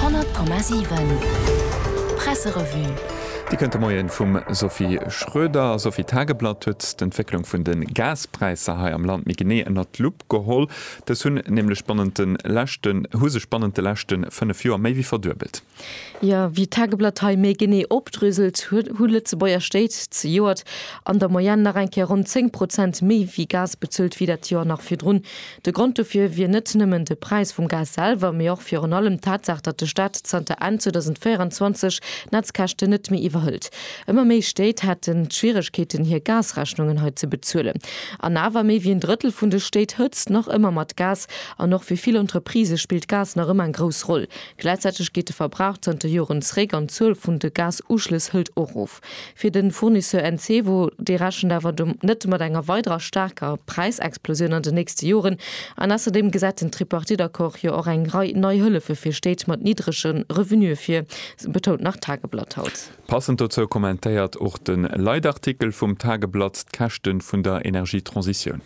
100,7 Presserevue. Dir kënnt de Moie vum Sophie Schroeder. Sophie, d'Tageblatt huet d'Entwécklung vun de Gaspräisser hei am Land méi genee ënnert d'Lupp geholl. Dës hu sech bannent de leschte fënnef Joer méi wéi verduebelt. Jo, wéi d'Tageblatt hei méi genee opdröselt, hu Lëtzebuerger Stéit zejoert an der Moyenne nach eng Kéier ronn 10 Prozent méi fir Gas bezuelt wéi dat Joer nach virdrun. De Grond dofir wier net nëmmen de Präis vum Gas selwer, mee och virun allem d'Tatsaach, datt de Staat zanter Enn 2024 d'Netzkäschten net méi iwwerhëlt. Ëmmer méi Stéit hätten Schwieregkeeten, hir Gasrechnungen hei ze bezuelen. An awer, méi wéi en Drëttel vun de Stéit hëtzt nach ëmmer mat Gas. An och fir vill Entreprisë spillt Gas nach ëmmer eng grouss Roll. Gläichzäiteg geet de Verbrauch zënter Joren zréck an d'Zuel vun de Gas-Uschlëss hëlt och of. Fir de Fournisseur Encevo, dee rechent awer net mat enger weiderer staarker Präisexplosioun an den nächste Joren. An ausserdeem gesäit den Tripartite-Accord jo och eng Rei nei Hëllefe fir Stéit mat niddrege Revenue vir, betount nach d'Tageblatt haut. Passend dozou kommentéiert och de Leitartikel vum Tageblatt d'Käschte vun der Energietransitioun.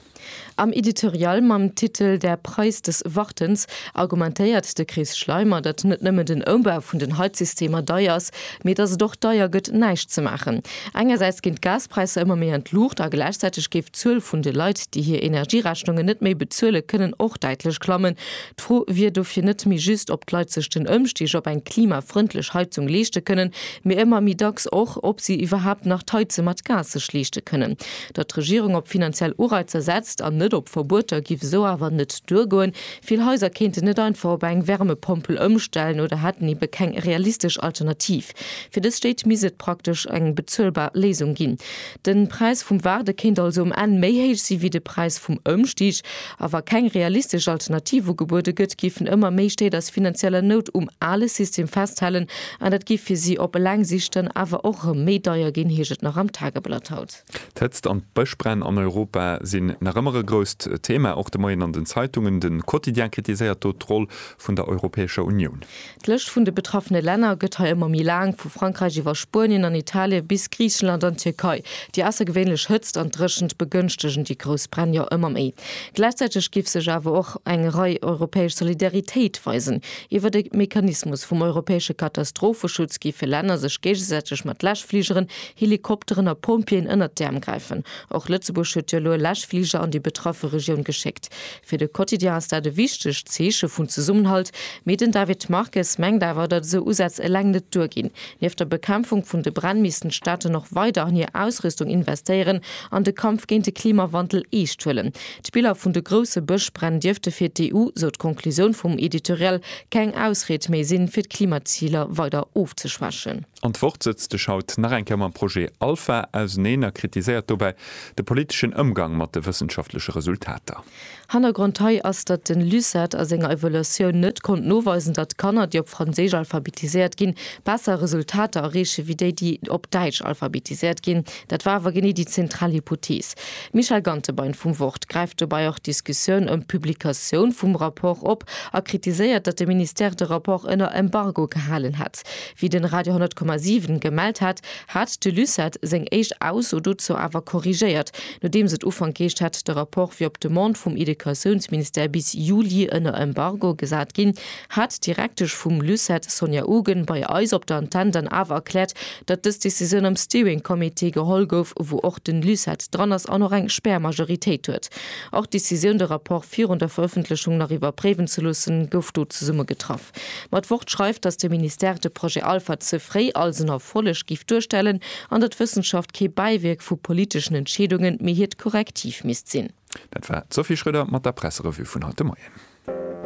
Am Editorial mam Titel Der Preis des Wartens argumentéiert de Chris Schleimer, datt net nëmmen den Ëmbau vun den Heizsystemer deier ass, mee datt et och deier gëtt, näischt ze maachen. Engersäits ginn d'Gaspräisser ëmmer méi an d'Luucht a gläichzäiteg géif d'Zuel vun de Leit, déi hir Energierechnungen net méi bezuele kënnen, och däitlech klammen. D'Fro wier dofir net méi just, ob d'Leit sech den Ëmstig op eng klimafrëndlech Heizung leeschte kënnen, mee ëmmer méi dacks och, ob si iwwerhaapt nach d'Heize mat Gas sech leeschte kënnen. Datt d'Regierung op finanziell Ureizer setzt an net op Verbueter giff esou awer net duergoen. Vill Haiser kéinten net einfach op eng Wärmepompel ëmstellen oder hätten ebe keng realistesch Alternativ. Fir dës Stéit misst et praktesch eng bezuelbar Léisung ginn. Den Präis vum Waarde kéint also um Enn méi héich si wéi de Präis vum Ëmstig. A wa keng realistesch Alternativ ugebuede gëtt, giffen ëmmer méi Stéit aus finanzieller Nout um ale System festhalen an dat giff fir si op laang Sicht dann awer och erëm méi deier ginn, heescht et nach am Tageblatt haut. Stad. D'Hëtzt an d'Bëschbränn an Europa sinn nach ëmmer e grousst Thema, och de Moien an den Zeitungen. De Quotidien kritiséiert do d'Roll vun der Europäescher Unioun. D'Lëscht vun de betraffene Länner gëtt hei ëmmer méi laang, vu Frankräich iwwer Spuenien an Italien bis Griichenland an d'Tierkei. Déi aussergewéinlech Hëtzt an d'Dréchent begënschtegen déi grouss Bränn jo ëmmer méi. Gläichzäiteg giff sech awer och eng Rei europäesch Solidaritéit weisen. Iwwer e Mechanismus vum europäesche Katastropheschutz giffe Länner sech géigesäiteg mat Läschfligeren Helikopteren a Pompjeeën ënnert d'Äerm gräifen. Och Lëtzebuerg huet jo elo e Läschfliger an déi betraffe Regioun geschéckt. Fir de Quotidien ass dat e wichtegt Zeeche vun Zesummenhalt. Mee den David Marques mengt awer, datt esou Usätz eleng net duerginn. Nieft der Bekämpfung vun de Bränn missten d'Staaten och weider an hir Ausrüstung investéieren an de Kampf géint de Klimawandel eescht huelen. D'Biller vun de grousse Bëschbränn dierfte fir d'EU, sou d'Conclusioun vum Editorial, keng Ausried méi sinn, fir d'Klimaziler weider ofzeschwächen. An d'Wort sëtzt sech haut nach eng Kéier mam Projet Alpha auseneen a kritiséiert dobäi de politeschen Ëmgang mat de wëssenschaftleche Resultater. Hannergrond hei ass, datt den LUCET a senger Evaluatioun net konnt noweisen, datt Kanner, déi op Franséisch alphabetiséiert ginn, besser Resultater erreechen, wéi déi, déi op Däitsch alphabetiséiert ginn. Dat war awer genee déi zentral Hypothees. D'Michèle Gantebein vum Wort gräift dobäi och d'Diskussioun ëm d'Publikatioun vum Rapport op a kritiséiert, datt de Ministère de Rapport ënner Embargo gehalen hätt. Wéi den Radio 10,7 gemellt hat, hat de LUCET seng éischt Ausso dozou awer korrigéiert, nodeems et Ufank geescht hat, de Rapport wier op Demande vum Educatiounsministère bis Juli ënner Embargo gesat ginn, hat d'Direktesch vum LUCET Sonja Oogen bei eis op der Antenn dann awer erkläert, datt dës Decisioun am Steering Committee geholl gouf, wou och den LUCET dran ass an och eng spare Majoritéit huet. Och d'Decisioun de Rapport virun der Verëffentlechung nach iwwerpréiwen ze loossen, gouf do zesummegetraff. Ma d'Wort schreift, datt de Ministère de Projet Alpha ze fréi als en Erfolleg géif duerstellen an datt d'Wëssenschaft kee Bäiwierk vu politeschen Entscheedungen, mee hiert Korrektiv misst sinn. Dat war d'Sophie Schröder mat der Presserevue vun haut de Moien.